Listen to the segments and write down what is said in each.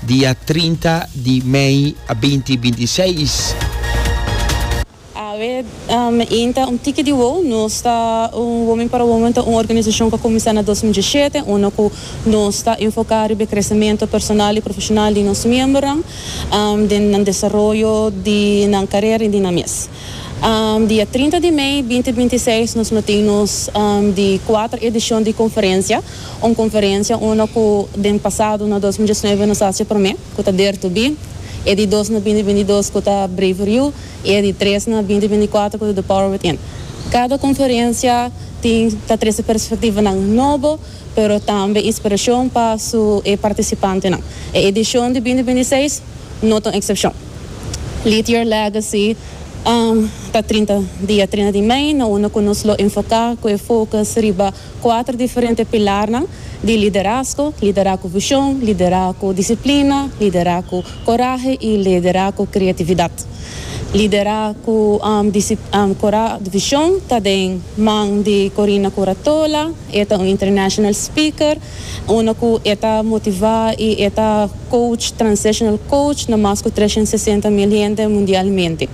Dia trinta di mei a binti binti seis. Awe in ta un tiki di wou. Nos ta un Women para Women ta un organisashon ku kuminsá na dos mil diesshete, unda ku nos ta enfoká riba e kresementu personal i profeshonal di nos miembernan den nan desaroyo di nan karera i di nan mes. Dia trinta di mei binti binti seis nos lo tin nos di kuater edishon di konferensia, un konferensia unda ku den pasado na dos mil diesnuebe nos hasi e promé, ku ta Der To Be, e di dos na binti binti dos ku ta Braver You i e di tres na binti binti kuater ku ta The Power Within. Kada konferensia tin ta trese perspektivanan nobo. pero tambe inspirashon pa su e partisipantenan. E edishon di binti binti seis no ta un eksepshon. Lead Your Legacy ta trinta dia trinta di mei na unda ku nos lo enfoká ku e fokus riba kuater diferente pilarnan di liderazgo, liderá ku vishon, liderá ku disiplina, liderá ku korahe i liderá ku kreatividat. Liderá ku vishon ta den man di Corina Curatola. E ta un international speaker, uno cu e ta motiva y e ta coach, transitional coach, na mas cu trescientos sesenta mil hende mundialmente.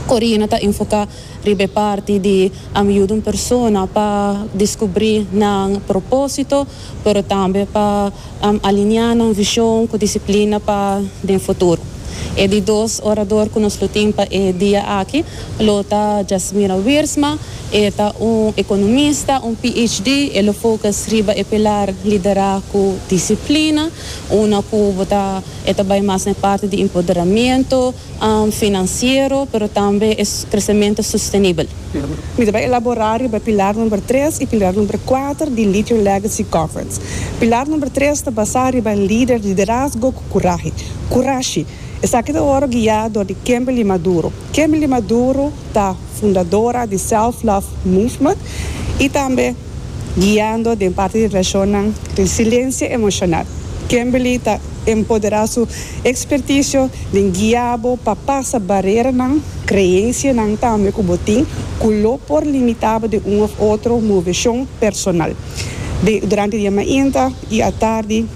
Corina ta enfoca riba e parti di ami yuda un persona pa descubri nan proposito, pero tambe pa ami alinea nan vision cu disciplina pa den futuro. E di dos orador cu nos lo tin pa e dia aki lo ta Jasmira Wiersma, E ta un ekonomista, un PhD. E lo focus riba e pilar liderá ku disiplina, una ku bo ta e ta bai mas na e parti di empoderamentu finansiero, pero tambe e kresementu sostenibel. Mi ta bai elaborá riba e pilar number tres i pilar number kuater di Lead Your Legacy Conference. Pilar number tres ta basá riba lider, liderazgo ku kurahe, kurashi. Esaki ta ora guiá dor di Kimberly Maduro. Kimberly Maduro ta fundadora di Self Love Movement i tambe guiando den parti di relashonnan resiliencia emocional. Kimberly ta empoderá su experticio den guiá bo pa pasa bareranan, creencianan tambe cu bo tin cu lo por limitá bo den un of otro moveshon personal. Durante di e mainta i atardi.